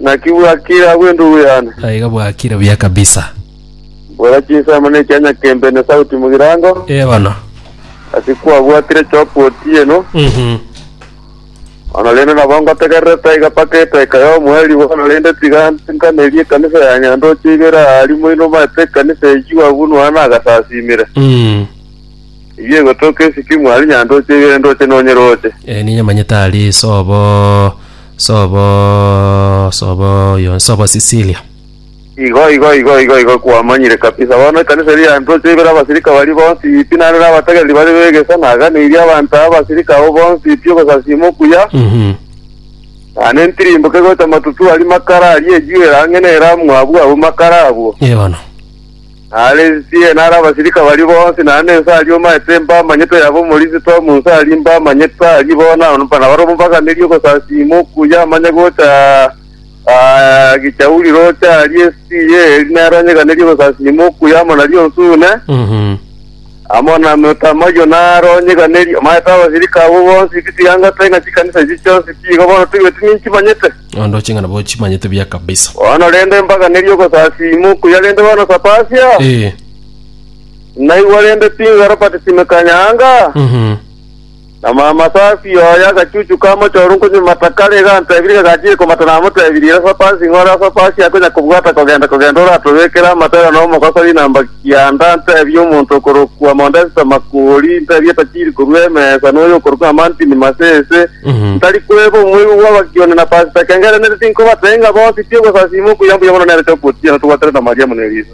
Naki bwakire agwo endugu yane. Aiga bwakire buya kabisa. Bora chinsemo ne ekianya kembe ne sauti mugirango. Ee bono. Ase kwabwatire chop otieno. Mhm. Bono rende nabo ngotegerere taiga mpaka etaika y'omoeri bono rende tiga ntenkanerie ekanisa ya Nyandoche ibere aa rimo inomaete ekanisa eyio agwo nonya nagasasimire. Mm. Eyio egotoka esikimu aria Nyandoche ibere ndoche nonyeroche. Ee ninyamanyete aria isobo. Sobo sobo yo sobo Sicilia. Igo igo igo igo igo kwamanyire kabisa. Bono ekanisa eria yantoche ibere abasirika baria bonsi pi naende nabatagereri bare b'egeso naganeirie abanto aba abasirika abwo bonsi pi ogosasiima okuya, Mhm. naende ntirimboke gocha matutu aria makara aria ejuo erang'e nere amwabu abwo makara abwo. Eono. Naende ense eye nare abasirika baria bonsi, naende ense aria omanyete mbamanyete, yaba omorisia toa mu nse aria mbamanyete aria bono, nabare omobaganeria ogosasiima okuya amanye gocha aa gichauri roche aria ense eye, eri nere onyeganerie ogosasiima okuya amo naria onsune. amo na Motamaio na Aroni, iga nerio omaete abasirika abwo bonsi chitiangato ng'a chikanisa echi chionsi chiigo bono toigweti ninchimanyete. Onde oche ng'a nabo ochimanyete buya kabisa. Bono rende mpaka neri ogosasiima okuya rende bono sapasia, Ee. naigwa rende pi ng'a Robert Simeka Nyaanga, Mhm. Na Maamasasi oye agachuchuka amochore nkonyimata kare, iga antebirie kagachiire komata namotebirie, Resa pansi ng'ore ase opansi aa konya kobwata kogenda kogenda oratobekere amatera na omogoso rinamba kianda, ntebie omonto okorokwa Mondesta Makori, ntebie tachiri korua emesa, noyo okorokwa Amantini Masese, ntari kweba omoigwa bw'Abagioni na Pasita Kengere, nere tinkobatee ng'a bonsi ti ogosasiima okuya mbuya mono nere chokwotiana togwaterete Mariamu ne Elisa.